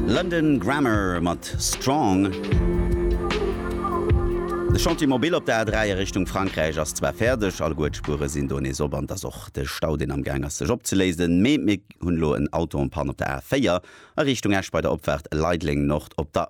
London Grammar mat Strong. De Chantier Mobile op der A3 a Richtung Frankräich ass zwar fäerdeg, alleguer d'Spuere sinn do nees op an et ass och de Stau deen am Gaang ass sech opzeléisen, mee mir hunn elo en Auto en panne op der A4 a Richtung Esch bei der Opfaart Leideleng-Nord op der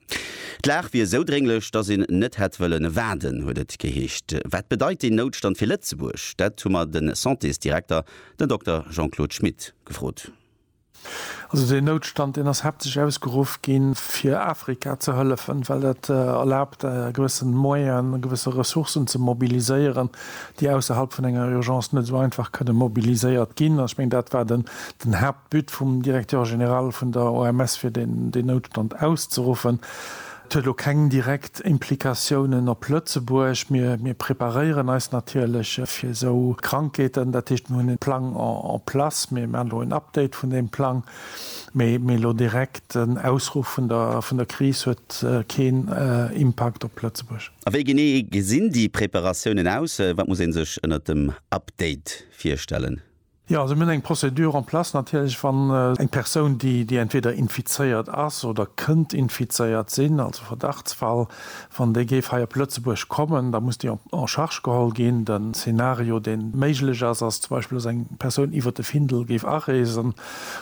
D'Lag wier esou drénglech, datt een net hätt wëllen waarden, huet et geheescht. Wat bedeit deen Noutstand fir Lëtzebuerg? Dat hu mer de Santésdirekter, den Dokter Jean-Claude Schmit, gefrot. Also deen Noutstand, deen ass haaptsächlech ausgeruff ginn, fir Afrika ze hëllefen, well dat erlaabt, e gewësse Moyen, e gewësse Ressourcen ze mobiliséieren, déi ausserhalb vun enger Urgence net esou einfach kënne mobiliséiert ginn. Ech mengen, dat war den Haaptpunkt. D'Bütt vum Directeur général vun der OMS fir deen Noutstand auszeruffen, huet elo keng direkt Implikatiounen op Lëtzebuerg. Mir preparéieren eis natierlech fir esou Krankheeten. Dat heescht, mir hunn e Plang en place. Mir maachen elo en Update vun deem Plang. Mee elo direkt den Ausruff vun der Kris huet keen Impakt op Lëtzebuerg. A wéi genee gesinn déi Preparatiounen aus? Wat muss ee sech ënnert dem Update virstellen? Jo, also mir hunn eng Procédure en place natierlech, wann eng Persoun, déi, déi entweder infizéiert ass oder kënnt infizéiert sinn, also Verdachtsfall, wann déi géif hei op Lëtzebuerg kommen, da muss déi en charge geholl ginn. Den Szenario, deen méiglech ass, ass zum Beispill, dass eng Persoun iwwert de Findel géif areesen,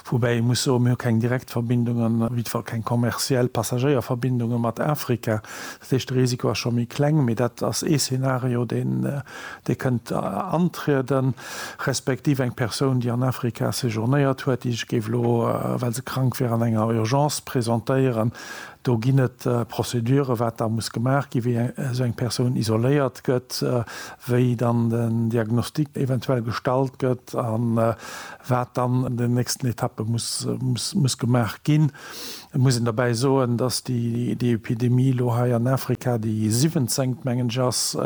woubäi ee muss soen, mir hu keng direkt Verbindungen, op jiddwer Fall keng kommerziell Passagéierverbindungen mat Afrika. Dat heescht, de Risiko ass scho méi kleng, mee dat ass ee Szenario, deen, Dir kënnt antrieden, respektiv eng Persoun, déi an Afrika séjournéiert huet, déi sech géif elo, well se krank wier, an enger Urgence presentéieren. Do ginn et Prozeduren, wat da muss gemaach ginn, wéi esou eng Persoun isoléiert gëtt, wéi dann den Diagnostic eventuell gestallt gëtt a wat dann an den nächsten Etappe muss gemaach ginn. Et muss een derbäi soen, dass déi Epidemie elo hei an Afrika déi siwenzéngt, mengen ech, ass,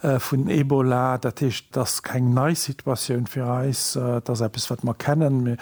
vun Ebola. Dat heescht, et ass keng nei Situatioun fir eis. Et ass eppes, wat mer kennen.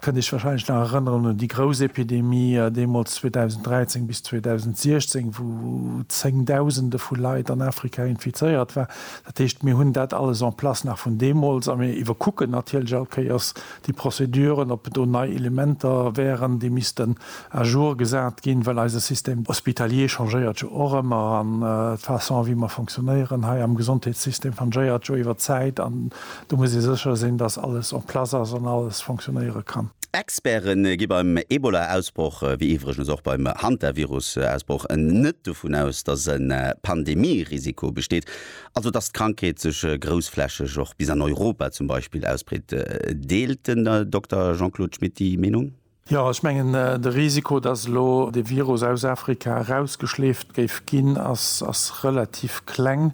Dir kënnt Iech warscheinlech nach erënneren un déi grouss Epidemie deemools 2013 bis 2016, wou Zéngdausende vu Leit an Afrika infizéiert waren. Dat heescht, mir hunn dat alles en place nach vun deemools a mir iwwerkucken natierlech all Kéiers déi Prozeduren, ob do nei Elementer wären, déi missten à jour gesat ginn, well eise Système hospitalier changéiert jo och ëmmer an d'Façon wéi mer fonctionnéieren hei am Gesondheetssystem changéiert jo iwwer d'Zäit an do muss ee sécher sinn, dass alles en place ass an alles fonctionnéiere kann. Experte gi beim Ebola-Ausbroch, wéi iwwregens och beim Hantavirus-Ausbroch, net dovun aus, dass e Pandemie-Risiko besteet, also dass d'Krankheet sech groussflächeg och bis an Europa zum Beispill ausbreet. Deelt den Dokter Jean-Claude Schmit déi Meenung? Jo, ech mengen, de Risiko, datt elo de Virus aus Afrika erausgeschleeft géif ginn, ass relativ kleng.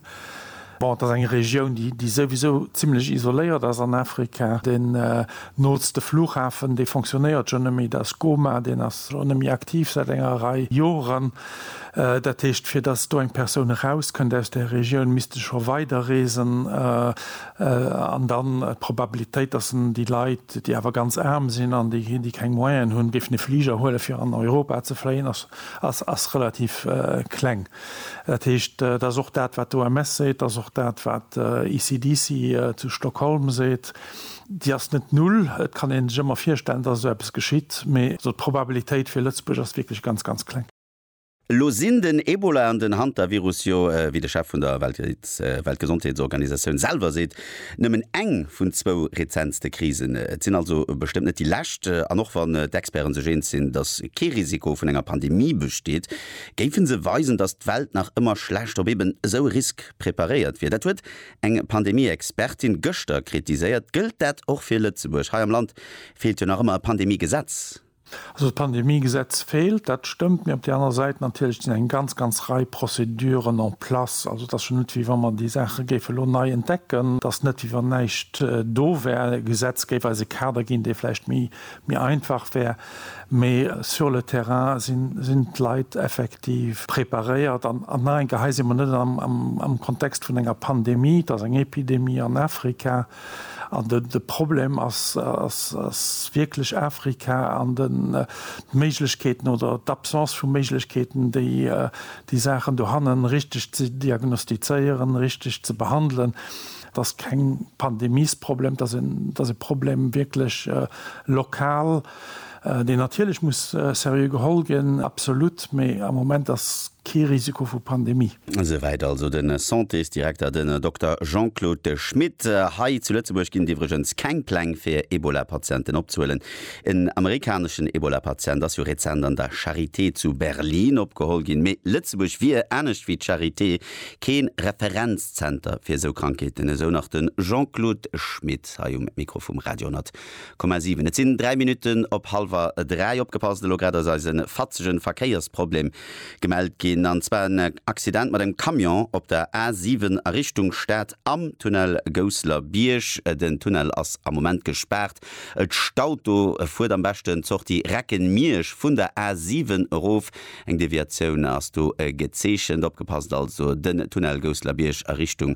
Bon, et ass eng Regioun, déi souwisou zimlech isoléiert ass an Afrika. Deen nootste Flughafen, dee fonctionnéiert schonn net méi, dat ass Goma. Deen ass elo net méi aktiv säit enger Rei Joren. Dat heescht, fir datt do eng Persoun erauskënnt aus där Regioun, misst e scho weiderreesen. an dann d'Probabilitéit, dass en déi Leit, déi awer ganz aarm sinn an déi keng Moyenen hunn, géifen e Fliger huelen, fir an Europa ze fléien, ass relativ kleng. Dat heescht, dat ass och dat, wat d'OMS seet, dat ass och dat, wat ECDC zu Stockholm seet, Déi ass net null. Et kann ee sech ëmmer virstellen, dass esou eppes geschitt, mee d'Probabilitéit fir Lëtzebuerg ass wierklech ganz, ganz kleng. Elo sinn den Ebola an den Hantavirus jo, wéi de Chef vun der Weltgesondheetsorganisatioun selwer seet, nëmmen eng vun zwou rezentste Krisen. Et sinn also bestëmmt net déi lescht. An och wann d'Experte sech eens sinn, datt kee Risiko vun enger Pandemie besteet, géife se weisen, datt d'Welt nach ëmmer schlecht op eben esou e Risk preparéiert wier. Dat huet eng Pandemie-Expertin gëschter kritiséiert. Gëllt dat och fir Lëtzebuerg? Hei am Land feelt jo nach ëmmer e Pandemie-Gesetz. Also d'Pandemiegesetz feelt, dat stëmmt, mee op där anerer Säit natierlech sinn eng ganz, ganz Rei Prozeduren en place. Also et ass jo net, wéi wa mer déi Saache géife lo nei entdecken. Et ass net, wéi wann näischt do wär. D'Gesetz géif eis e Kader ginn, dee vläicht méi einfach wär, mee sur le terrain sinn d'Leit effektiv preparéiert. An nach eng Kéier, hei si mer net am Kontext vun enger Pandemie, et ass eng Epidemie an Afrika. An de Problem ass wierklech Afrika an d'Méiglechkeeten oder d'Absence vu Méiglechkeeten, déi Saachen dohannen richteg ze diagnostizéieren, richteg ze behandelen. Et ass keng Pandemiesproblem, et ass e Problem wierklech lokal. deen natierlech muss seriö geholl ginn, absolut, mee am Moment ass kee Risiko vu Pandemie. Esouwäit also de Santésdirekter, den Dokter Jean-Claude Schmit. Hei zu Lëtzebuerg ginn et iwwregens keng Pläng, fir Ebola-Patienten opzehuelen. En amerikaneschen Ebola-Patient ass jo rezent an der Charité zu Berlin opgeholl ginn. Mee Lëtzebuerg wier, anescht wéi d'Charité, kee Referenzzenter fir esou Krankheeten, esou nach de Jean-Claude Schmit hei um Mikro vum Radio 10 Komm a 7, et sinn 3 Minutten op halwer 3. Opgepasst, elo grad ass eis e fatzegen Verkéiersproblem gemellt ginn, an zwar en Accident mat engem Camion op der A 7 a Richtung Stad am Tunnel Gousseler Bierg. Den Tunnel ass am Moment gespaart, et staut do. Fuert am beschten d'Sortie Recken-Miersch vun der A 7 erof, eng Deviatioun ass do gezeechent. Opgepasst also, den Tunnel Gousseler Bierg a Richtung